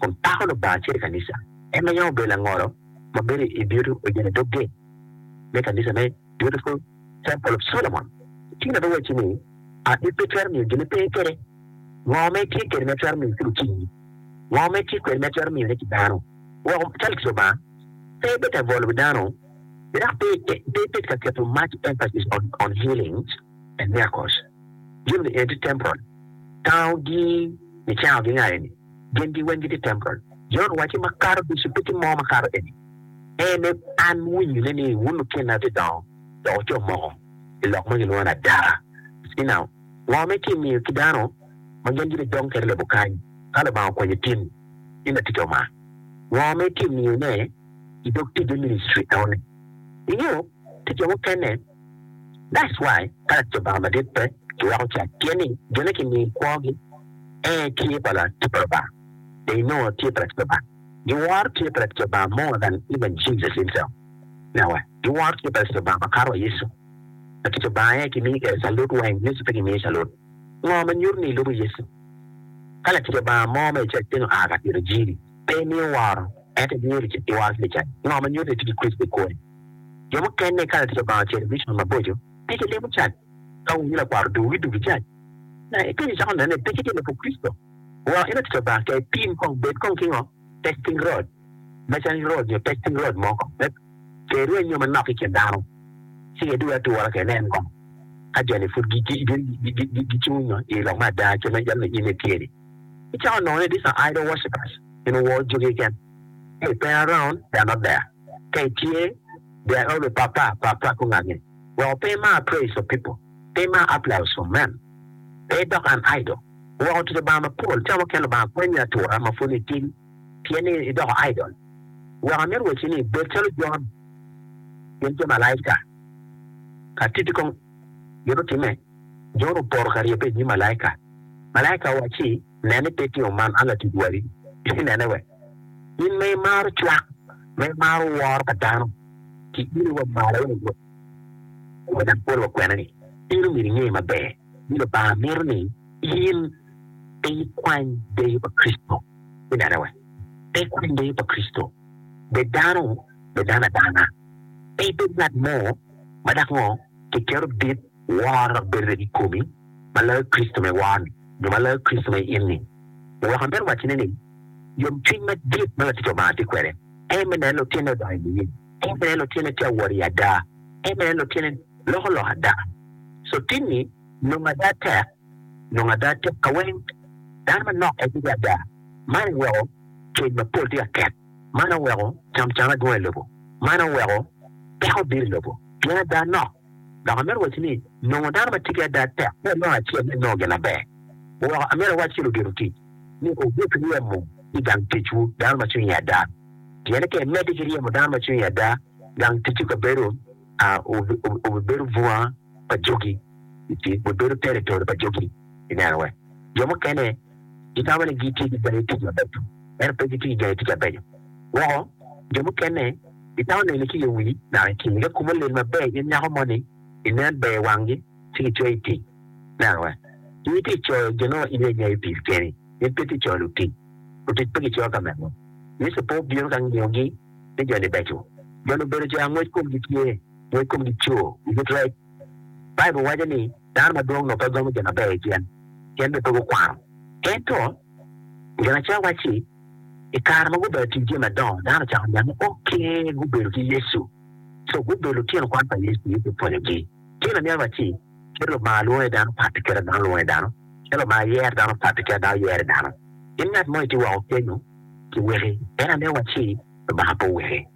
kun pako Lubanga acel i kanica, en ma yam obedo langolo ma bedo i Dyodi oyen i dog geng me kanica me Beautiful Temple of Solomon. Tii na biwacci ni adit pe twero miyo gin ipe kwede, ngo ma itye kwede ma itwero miyo ki lutingi? Ngo ma itye kwede ma itwero miyone ki dano woko cal ki Lubanga? Pe ibed ka bwolo wi dano, dok pe ibed ka keto much emphasis on healings and miracles. Jami eni tye temporal. Tango gi nicango gi nga eni? Gin gi weng gitye temporal. Jon owaci makato ducu pe tye mo makato eni. En e an winyo ne ni wun lukinna tye dongo dok wuco moko I lok ma gilwongo ni adara. See now ngo me ki miyo ki dano ma gin gibbe dong kede lobo kany ka lubanga okwenyo tin ni latica omar ngo me ki miyo ne idog tic me ministry enoni ingeyo tica mukene That's why kalati Lubanga madit pe kiweko cat pien ni jo ne kimiyo kwogi ee tye pa Lati pa Lubanga, they know tye pa Lati pa Lubanga. Giworo tye pa Lati pa Lubanga more than even Jesus himself. Now what? Giworo tye pa Lati pa Lubanga makato wa Yecu. Lati pa Lubanga ee kimiyo kede calut weng, Yecu pe kimiyo calut. Ngo ma nyuto ni ilubo Yecu? Ka Lati pa Lubanga mo ma ical cen oa ka tito jiri, pe imiyo woro, ento imiyo iworo ki licat, ngo ma nyuto ni itye ki Kricito i kori? Jo mukene ka latic Lubanga ocito i Richmond maboco, peke limo cac. Ka wunyo lakwaro dugu ki dugi cac, ma ipeny icako neno ni peke tye lobo Kricito, woro en latic Lubanga ki aye pim kong bed kong ki ngo, testing rod, measuring rod nyo testing rod mo kong me tero enyo manok ki kin dano. Ci edwogi atura kene en kong ka joni pud gicung nyo i lok me ada kit ma jalo ninyim-mi tye ni. Icako nongo ni these are idol worshipers, gin woro jogi keken. Hey, pera round, they are not there. Ka itye, there always papa papa ku ngage woko pe imar praise of people, pe imar applause of men, pe idok an idol woko tic Lubanga mapol ca mukene Lubanga kwanyi atura ma pud itin pien ni idoko idol weko amito wacci ni bed calo Jon gin jo malaika ka titi kong gin otimme Jon opoto ka rye pe inyim malaika malaika owacci Nen ni pe itingo man, an latic wadi. Ci nene wek in ma imaro cwak, ma imaro woro pa dano, ci ilo wa malo wano dwong kome dok polo wa kwena-ni. In omyero inge maber ni Lubanga mito ni in pe ikwany deyo pa Kricito. Ci nene wek pe ikwany deyo pa Kricito. Bed dano, bed dano adana. Pe ibed ngat mo ma dok ngo kiketo dit. Wor bedo rec i komi ma loyo Kricito ma iwor-ni, nyo ma loyo Kricito ma i in-ni. Wek amito waccine ni, yomcwiny madit ma latic Lubanga tye kwede en me neno lutine odongo i niye, en me neno lutine tye awor i ada, en me neno lutine loko lok ada. Cotinni nongo ada tek, nongo ada tek kaweng. Dano manok en bedo ada. Man oweko cwiny mapol tye ka ket, man oweko camcam adwong i lobo, man oweko peko biro i lobo pien ada nok. Dok amito wacci ni, nongo dano ma ticce ada tek pe anongo acel me nongo gin maber woko. Amito awacci ludito tic ni wubut ryemo ki gang ticwu dano ma cwinye ada, pien ka imedde ki ryemo dano ma cwinye ada, gang ticwu ka bedo a wubibedo bunga pa jogi, wubibedo territory pa jogi. I neno, wek jo mukene. gitamo ni gitye ki gayo tic mabeco, ento pe gitye ki gayo tic mabeco woko. Jo mukene gitamo neni ki yo wii naka i kingi. Ka kumo olil maber in nyako moni, inen ber i wanggi ci kicoyi i tic. Neno wa, in itye ka coyo jo nongo in iye itic keni, in pe itye ka coyo lutic. Lutic pe gicoyo ka mego. Yecu pe obino ka ngiyogi ni jo-ni beco. Jo-ni obedo jo angwec komgi tye, ngwec komgi coo, giyutrec. Baibul waco ni dano madwong onongo pe gamo jami maber i cen, pien onongo pe gukwano. Ento, Ginaca wacci, I kare ma gubedo atir jami madongo, dano ocako niang ni oke gubedo ki Yecu. So, gubedo lutino kwan pa Yecu, Yecu opwonyogi. Tye lamyero wacci, Kit Lubanga lwongo iye dano pat ki kit ma dano lwongo iye dano, kit Lubanga yero dano pat ki kit ma dano yero iye dano. In ngat mo itye woko kenyu, ci weki. En amyero wacci. Lubanga pe oweri.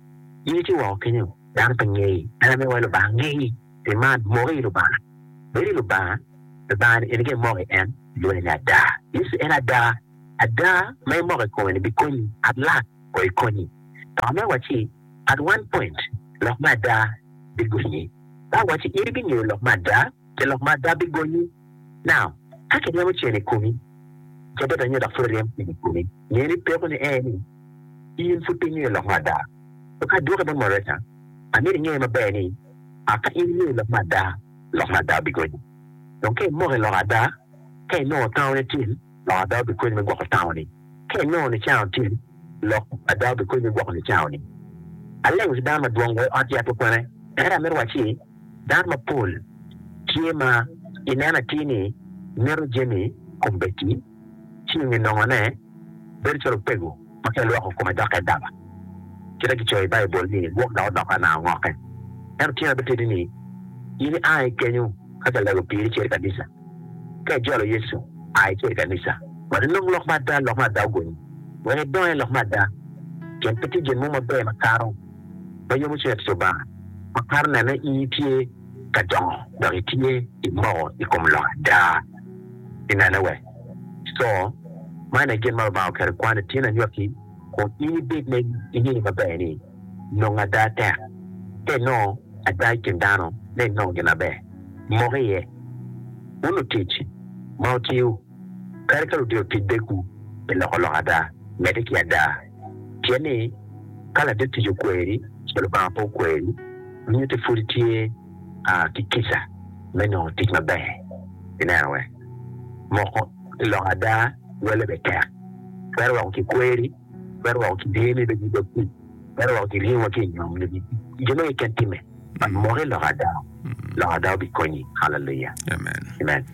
In ci woko kenyo, dano pe ngei. En aye wai Lubanga ngei. Pi man, moki i Lubanga. Bed i Lubanga, Lubanga-ni en aye moko i en, ilwonge ni ada. Yecu en ada. Ada ma imoko i kome-ni bikonyi. At lak o i konyi. Dok me wacci, at one point, lok me ada bigonyi. Ka awacci in ibingeyo lok me ada, ce lok me ada bigonyi. Now, ka kiryemo cen i komi, cadet anyo dok pud iryemo cen i komi, nge ni peko ni aye ni in pud pe ingeyo lok me ada. So ka adwoki bot moderator, amito inge maber ni a ka in ingeyo lok me ada, lok me ada bigonyi. Dong ka imoko i lok ada, ka inongo tango nitim, lok ada obikonyi me gwoko tangoni. Ka inongo nicango otim, lok ada obikonyi me gwoko nicangoni. Aleng ki dano madwong wa i ot yat me kwena, ento amito wacci dano mapol tye ma ineno atir ni mito jami kombeddi ci onyo nongone bedo calo opego. ma pe lwoko kome doko adaba, kite gicoyo i Baibul ni gwok dok odoko anao ngokke. Ento tyen aye bitidi ni in i a i kenyo ka ca lego piri icer i kanisa. Ka ijolo Yecu, a icer i kanisa wek ilong lok ma ada, lok ma ada ogonyi wek idong i lok ma ada, pien pe tye gin mo maber makato ma yomo cwiny latic Lubanga makato nene in itye ka dongo dok itye imoko i kom lok ada. Inene we. Co, Man aye gin ma Lubanga oketo i kwan, Ityen anywaki, kun in ibed ma ingeyo maber ni, nongo ada tek, ka inongo ada i kin dano, ma inongo gin maber, mok iye. Wun lutic ma wutiyo, kadi ka ludiro tic begwu pi loko lok ada, medde ki ada. Pien ni ka ladir tic okweri, ci Lubanga pe okweri, nyutte pwod tye. a ki kica me nongo tic maber. Ineno wek moko ki lok ada lwalle bene tek. Twero weko kikweri, twero weko kidyemi bed ki dog tic, twero weko kiryemo wa ki i nyom nyo jo mege keken timme. Mok ilok ada, lok ada obikonyi. Haleluya! Amen.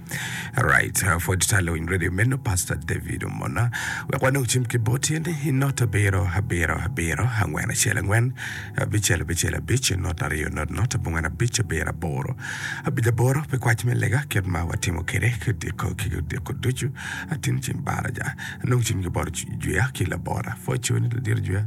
Alright, pwod tye ta lewiny radio meno Pastor David omona. Wek wanong cim ki boti ni i not abiro abiro abiro angwen acel angwen abicel abicel abic not aryo not not abongwen abic abiro aboro abic aboro pi kwac me lega kit ma watimo kede ki diko ki diko ducu atin cim baraja anong cim ki bot jwiya ki labora pwod cuni ladiro jwiya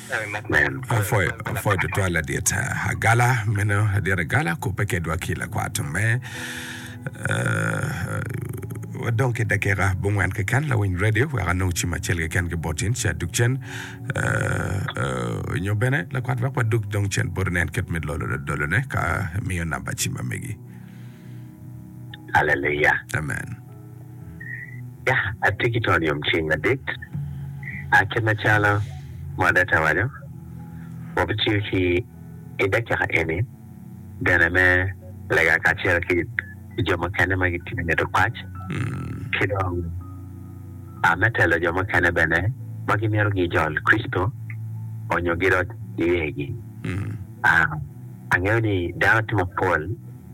Apwoyo tutwal ladit Agala, meno ladit Agala kubbe kedwa ki lakwat me. Wadong ki dakika bungwen keken lawiny radio wek anong cim acel keken ki bot in ca duk cen nyo bene lakwat wek waduk dong cen bot nen kit me lolo lodolone ka miyo namba cim amegi. Haleluya. Amen. Ya, atye ki tol yom ceng madit. A Kit macalo moderator waco, wabitiyo ki i dakika eni bene me lega kacel ki jo mukene ma gitye ka mito pac, ki dong a me telo jo mukene bene ma gimito gijol Kricito onyo gidot niyegi. A Angeyo ni dano tye mapol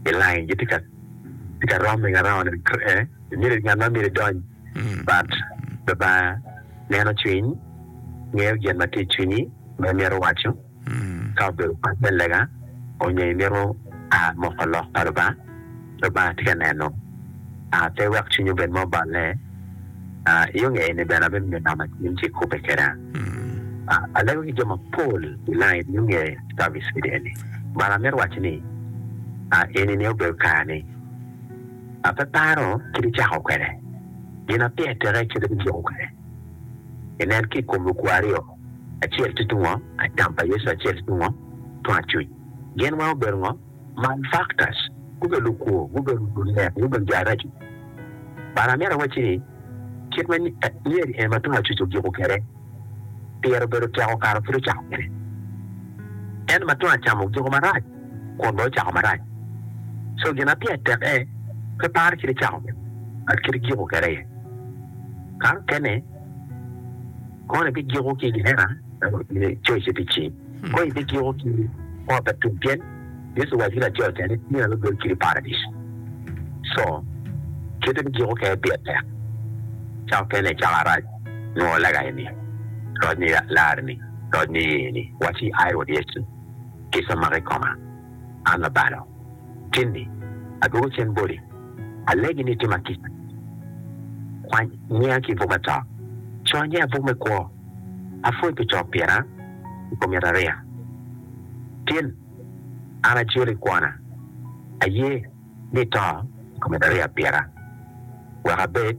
i lain gitye ka i ka rom i Arawa ni myero ngat ma myero idony but Lubanga neno cwiny ngeyo gin ma tye i cwinyi ma imito waco ka obedo pat me lega onyo imito a moko lok pa Lubanga, Lubanga tye ka neno a pe wek cwinyi obed ma oballe. I yo ngeye ni bene abedo nyo nama cwiny ci kobbe keda. Alego ki jo mapol i line yo nge service video eni but amito waco ni eni ni obedo kare ni ape paro kit icako kwede gin ape ateke kit ibijuko kwede inen ki kom lukwa aryo acel tye tungo acam pa Yecu acel tye tungo tung acuc gin weng obedo ngo? Man factors gubedo lukwo, gubedo lunek, gubedo jo araco. But amito awacci ni kit ma myeri eni ma tung acuc ojuko kwede pire obedo tek okato kit ocako kwede. Ento ma tung acam ojuko marac kun bene ocako marac. So gin ma pire tek aye pe paro kit icako kwede but kit ijuko kwede aye. Kare mukene koni bigiko ki i gihena coce pi cing. Kong ibityeko ki ot pa tum pien Yecu owaco ki laco ca ni tyen aye bedo kit i paradic. Co kite me giko kene pire tek cako kene cako arac nwo lega eni, roc ni lar ni, roc ni ye ni, waci ai Rwot Yecu kica maka i koma an labalo tin ni adwogo cen boti alegi ni tima kica kwany nyiya ki buk me to, co nyiya buk me kwo. Apwoc pi cok pyera i kom yat ariya. Tin, an aciro i kwona, aye ni ito i kom yat ariya pira, wek abed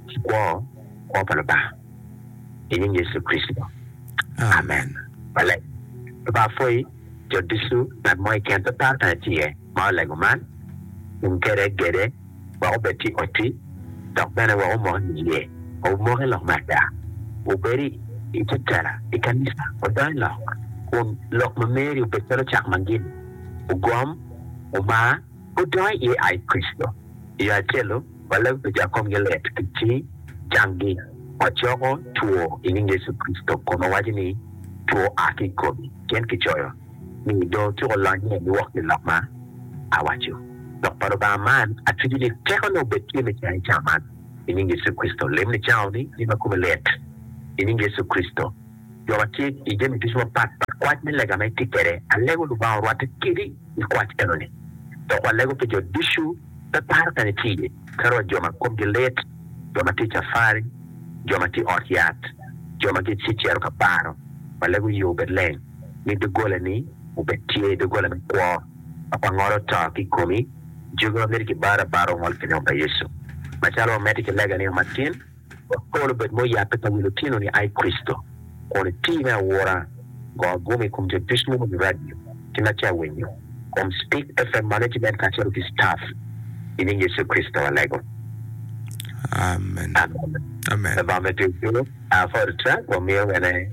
ki kwo, kwo pa Lubanga, i nying Yecu Kricito, amen. Maleng. Lubanga apwoyi jo ducu, ngat mo keken pe par kanya tye ma olego man, tum kede gede. wek obed ki oti dok bene wek omok i iye. Wumoki lok me ada. Wubedi i te tela i kanica. Wudony lok kun lok ma meri obed calo cak ma gini. Wugom, wumar, wudony i iye ai Kricito. I yo acel-lu, walabi pi jo a komgi lit ki ci cangi. Wacoko two i nying Yecu Kricito kun wawaco ni, Two a ki i komi, pien kicoyo. ni dong otyeko lony me lwok pi lok ma awaco. Lok pa Lubanga man, atwigi ni tekone obed tye me cayo cawa man, i nying Yecu Kricito. Lem ni cawa ni in ma komi lit, i nying Yecu Kricito. Jo ma tye i jami ducu mapat pat, kwac me lega ma itye kwede, alego Lubanga orwatte kedi i kwac enoni. Dok walego pi jo ducu, pe paro kany itye iye, calo wa jo ma komgi lit, jo ma tye i cafari, jo ma tye i ot yat, jo ma gicicero ka baro. Walego yo obed leng. ni doggolani obed tye doggola me kwo ma pa ngolo to ki i komi, jogi ma miti ki baro abara ongol ki nyom pa Yecu. Macalo wamedde ki lega nino matin, wek pol obed ma oyabbe pa wi lutino ni ai Kricito, kun iti me aura go aguma i kom jo ducu ma owinyo radio ki ma tye awinyo kom Speak FM Management kacelo ki Staff, i nying Yecu Kricito walego. Amen. Amen. Labongo me Twecco, Aah, Photo Track, wamiyo wene.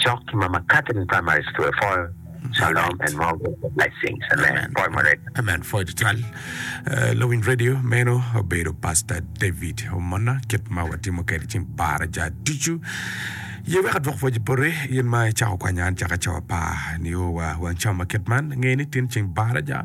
Cok ki Mama Catherine Primary School Phool Shalom and more Gospel Blessings Amen Phool Murega. Amen phool tutwal lawiny radio meno obedo pastor David omona kit ma watimo kede cing para ja ducu ye wek adwok pwoje pore in ma icako kwanya an caka cawa pa nio wa wang cama kit man ngeni tin cing bara ja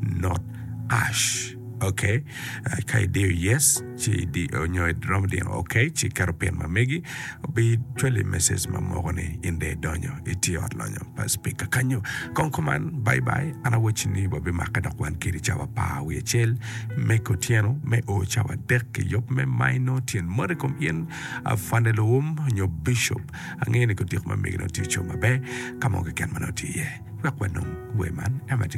not ash ok ka idiyo yes ci nyo iromo diyo ok ci iketo pin ma megi bi cwali message ma moko ni in dong idonyo itye ot lonyo pa speaker kanyo kong kuman bye bye an awaci ni wabimake dok wan kedi cawa apar wiye acel me kutyeno me o cawa adek ki yub me minor tyen moti kom in afande luwum nyo bishop angeyo ni kutyeko ma megi nongo tye ocung maber ka mo keken ma nongo tye iye wek wanong wer man ema tye